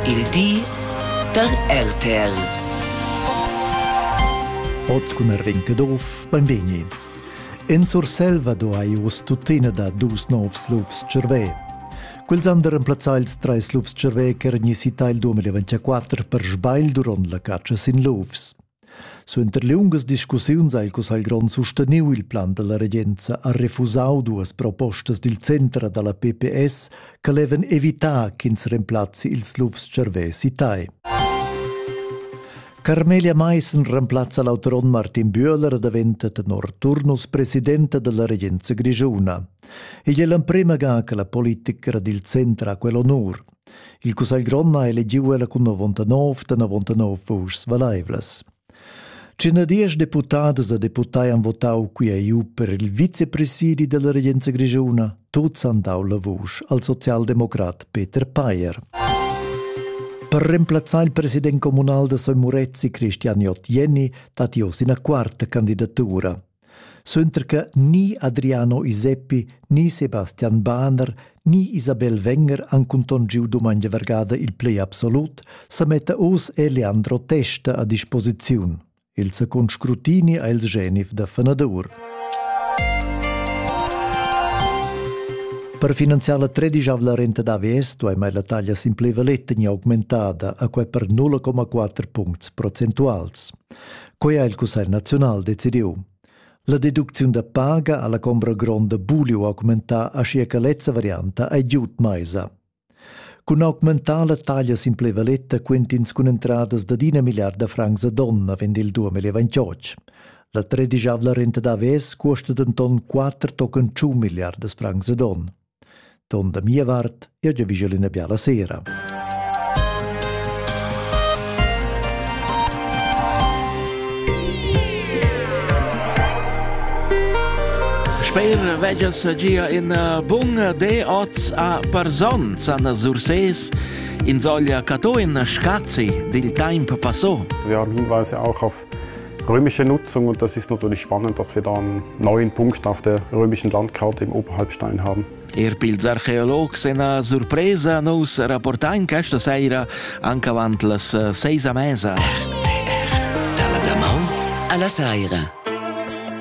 Il di da RTL. Oz cun Erwin Kedorf, benvegni. In Surselva do ei uss tuttina da dus novs lufs cervè. Quels han remplazzà ils treis lufs cervè ch'eran isi il 2024 per sbagl durant la catscha sin lufs. Suenter liungas discussiuns ha il cussagl grond susteniu il plan dalla regenza ha refusau duas propostas dil center dalla PPS che levan evitar ch'ins remplazzi ils lufs cervesi tai. Carmelia Meissen remplazza l'autonom Martin Bühler daventa tenor Turnus presidenta della regenza grigiuna. Igl è l'emprema ga che la politica dil center ha quell'onur. Il cussagl grond ha elegiu ella cun novontanov da novontanov vuschs valeivlas. Cinadias deputadas e deputai han votau qui EU per il vicepresidi della regenza grigiuna. Tuts han dau la vusch al socialdemocrat Peter Payer. Per remplazzare il presidente comunale da Soy Murezzi Cristian Jottieni dati osi una quarta candidatura. Suenter che ni Adriano Iseppi ni Sebastian Bahner ni Isabel Wenger han cuntongiu dumengia vargada il play absolut, sametta oz è Leandro Testa a disposiziun. Il secund scrutini ha il genif da fenadur. Per finanziar la tredisavla renta d'AVS duai la taglia simpleva letta ni augmentada a quai per 0,4 puncts procentuals. Quei ha il Cussegl naziunal decidiu. La deducziun da paga alla combra gronda buliu augmentar aschia che lezza varianta ei giud meisa. Cun augmentar la taglia simplevaletta quentins cun entradas da d'ina milliarda francs a donna vend il 2028. La tredigiavla renta da ves cuosta denton 4 tochen 5 milliardas francs a don. Ton da mia vart, jeu giavischel ina biala sera. Sper vegia sagia ina bunga de oz a Parzon, Sanna Surses, in soglia cato in Scazi, dil temp passò. Wir hinweise auch auf römische Nutzung und das ist natürlich spannend, dass wir da einen neuen Punkt auf der römischen Landkarte im Oberhalbstein haben. Er pils archeologs ina surpresa nous rapportain questa sera anche avanti las eh, seis a mesa. Alla damaun alla saira.